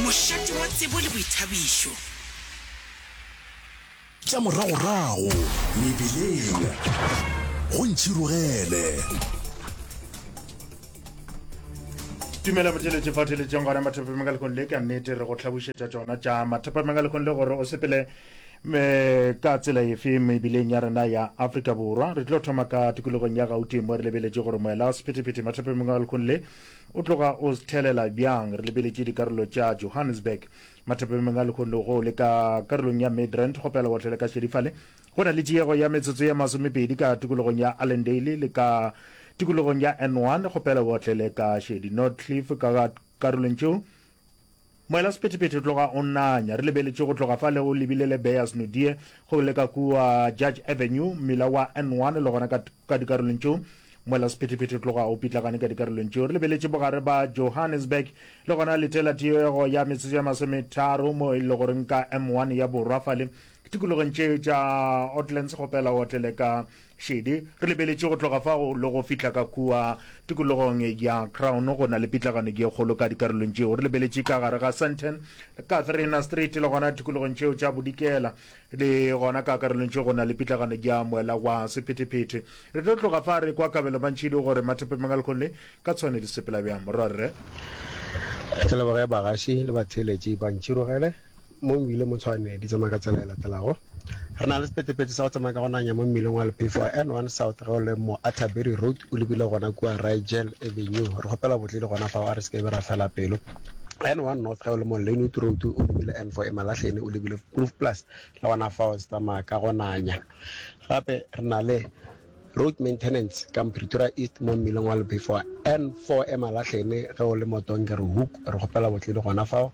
Mošate wa tsebo le boithabišo. Tša moragorago mebeleng go ntšhirogele. tumelo motheletše fa theletšeng gona mathapameng ka lekgong le ka nnete re go tlhabušetša tšona tša mathapameng ka lekgong le gore o sepele me ka tsela efe mebileng ya rena ya afrika borwa re tlo thoma ka tikologong ya gauteng mo re lebeletše gore moela wa sephetephete mathapameng ka lekgong le O tloga o thelela bjang? Re lebeletše dikarolo tša Johannesburg, mathapameng a lehono go le ka karolong ya Midrand go pela botlhole ka šedifale. Go na le tiego ya metsotso ye masomepedi ka tikologong ya Allendale le ka tikologong ya N1 go pela botlhele ka šedi. Nordcliff ka karolong tšeo Moela Sephethephethe tloga o nanya. Re lebeletše go tloga fale o lebile le Beyers Nodie go le ka kua Judge Avenue, mmila wa N1 le gona ka, ka dikarolong tšeo. Moela Sephethephethe tloga o pitlagane ka dikarolong tšeo. Re lebeletše bogare ba Johannesburg le gona letela tiego ya metsotso ya masometharo mo e le goreng ka M1 ya borwa fale. Tikologong tše tša Oatlands kgopela o otlele ka Šedi, Re lebeletše go tloga fa go le go fihla ka kua tikologong ya Crown go na le pitlagano ye kgolo ka dikarolong tšeo. Re lebeletše ka gare ga Sandton, Catherine Street le gona tikologong tšeo tša Bodikela. Le gona ka karolong tše go na le pitlagano ya moela wa sephetephete. Re tlo tloga fa re kwa kabelo ba ntšhidi gore Mathepe Mangal Conley ka tshwane di sepela bjang. Morwarre. Re leboge bagaši le batheeletši ba ntšhirogele. Mo Mmileng mo Tshwane di tsamaya ka tsela e latelago. Re na le sephethephethe sa go tsamaya ka go nanya mo mmileng wa lephefo wa N one South ge o le mo Atterbury Road o lebile gona kua Rigel Avenue. Re kgopela botledi gona fao a re se ke be ra fela pelo. N one North ge o le mo Lynnwood Road o lebile N four Emalahleni o lebile Groove Plus le gona fao se tsamaya ka go nanya. Gape re na le Road Maintenance ka Pretoria East mo mmileng wa lephefo wa N four Emalahleni ge o le mo Dongerhoek. Re kgopela botledi gona fao.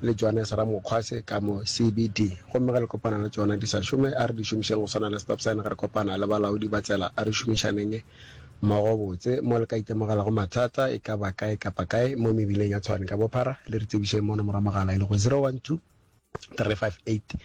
le tšona sa ramokgwa se ka mo CBD gomme ge le kopana le tšona di sa šome a re di šomišeng go swana le stop sign ge re kopana le balaodi ba tsela a re šomišaneng mmogo botse mo le ka itemogelago mathata e ka ba kae kapa kae mo mebileng ya Tshwane ka bophara le re tsebišeng mo nomoro ya mogala e lego 012 358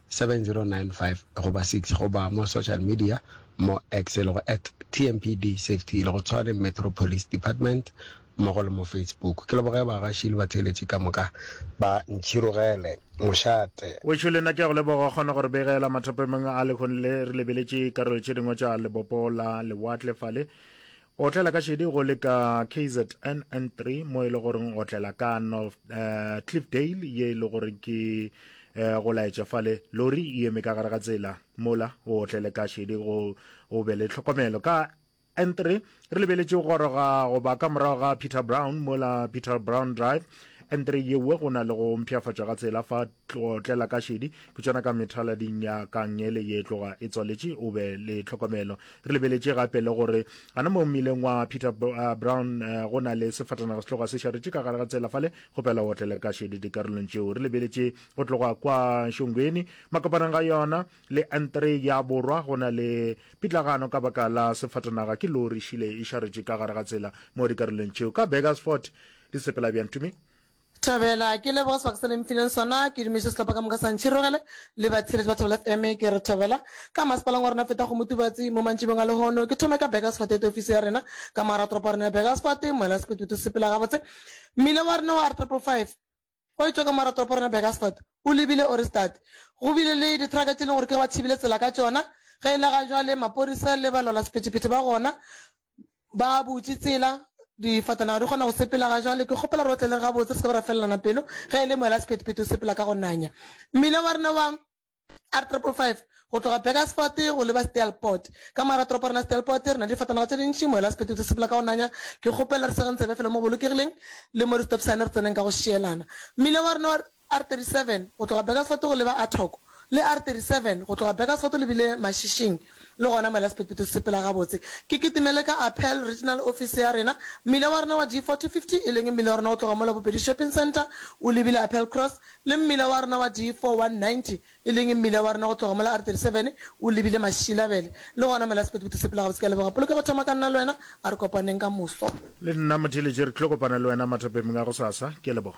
7095 goba 6 goba mo social media mo X e lego at TMPD Safety le go Tshwane Metro Police Department mmogo le mo Facebook. Ke leboge bagaši le batheeletši ka moka ba Ntšhirogele mošate. Wešo le nna ke a go leboga go kgona go re begela mathapameng a lekgone le. Re lebeletše karolo tše dingwe tša lebopo la lewatle fale. Otlela ka šedi go le ka kzn N3 mo e le gore otlela ka North uh, Cliffdale ye e le gore ke uh, go laetša fale lori e eme ka gare ga tsela mola o otlele ka šedi go o be le tlhokomelo ka N3 re lebeletše go goroga go ba ka morago ga Peter Brown mola Peter Brown Drive N3 yewe go na le go mpšhafatšwa ga tsela fa Tlotlela ka šedi, ke tšona ka methalading ya kangele ye tloga e tswaletše. O be le tlhokomelo. Re lebeletše gape le gore a na mo mmileng wa Peter Brown go na le sefatanaga se tloga se šaretše ka gare ga tsela fale. Kgopela o otlele ka šedi dikarolong tšeo. Re lebeletše go tloga kwa Shongweni makopanang ga yona le N3 ya borwa. Go na le pitlagano ka baka la sefatanaga ke lori e šile e šaretše ka gare ga tsela mo dikarolong tšeo. Ka Burgersfort di sepela bjang, Tumi? Thabela, Ke leboga sebaka se le mfileng sona. Ke dumiša sehlopha ka moka sa Ntšhirogele le batheeletši ba Thabela FM. Ke re Thabela ka masepaleng wa rena feta Kgomo Tubatsi mo mantšibeng a lehono. Ke thome ka Burgersfort ete ofisi ya rena ka mogara toropo ya rena ya Burgersfort. Moela Sekututu sepela gabotse mmila wa rena wa R triple five o etšwa ka mogara toropo ya rena Burgersfort o lebile Ohrigstad. Go bile le dithraka tše e leng gore ke ge ba thibile tsela ka tšona. Ge e le ga jwale maporisa le balwalasephethephethe ba gona Ba butše tsela, difatanaga di kgona go sepela ga jwale. Ke kgopela gore o tle le re gabotse re se ke ra felelana pelo, ge e le moela sephethephethe o sepela ka go nanya. Mmila wa rena wa R triple five go tloga Burgersfort go leba Steelpoort. Ka morago ga toropo ya rena Steelpoort re na le difatanaga tše dintši, moela sephethephethe o sepela ka go nanya. Ke kgopela re segeng tsebe fela mo bolokegileng le mo re stop sign re tseneng ka go šielana. Mmila wa rena wa. R37 go tloga Burgersfort go leba Athock, le R37 go tloga Burgersfort le bile Mašišing, le gona mola sephetphetho se sepela gabotse. Ke kitimele ka Apel, Regional Office ya rena. Mmila wa rena wa D4050, e leng mmila wa rena go tloga mola Bobedi Shopping Centre o lebile Apel Cross, le mmila wa rena wa D4190, e leng mmila wa rena go tloga mola R37 o lebile Mašilabele, le gona mola sephetphetho se sepela gabotse. Ke a leboga. Polokego thoma ka nna le wena. A re kopaneng ka moso. Le nna Motheeletši re tlilo kopana le wena mathapemng a gosasa. Ke a leboga.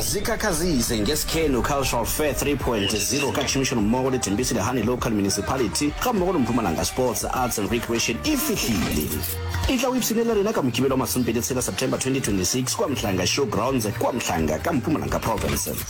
Zikhakhazise ngeSikhelu Cultural Fair 3.0 ka tšhomišano mmogo le Tembisi Lehane Local Municipality ga mmogo le Mpumalanga Sports, Arts and Recreation e fihlile. E tla o ipshine le rena ka Mokibelo wa masomepedi tshela September 2026 kua Mhlanga Showgrounds kua Mhlanga ka Mpumalanga Province.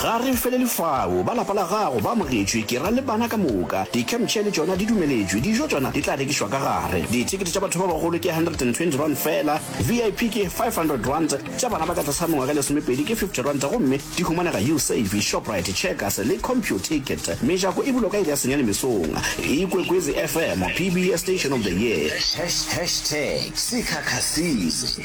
Ga re felele fao. Ba lapa la gago ba amogetšwe, ke ra le bana ka moka. Di-campchair le tšona di dumeletšwe. Dijo tšona di tla rekišwa ka gare. Dithekete tša batho ba bagolo ke R120 feela, VIP ke R500, tša bana ba ka tlase ga mengwaga e lesomepedi ke R50 gomme di humanega Usave, Shoprite, Checkers le Computicket. Mejako e bulwa ka iri ya senyane mesong. Ikwekwezi FM, PBS Station of the Year. Hashtags, Sikhakha Season.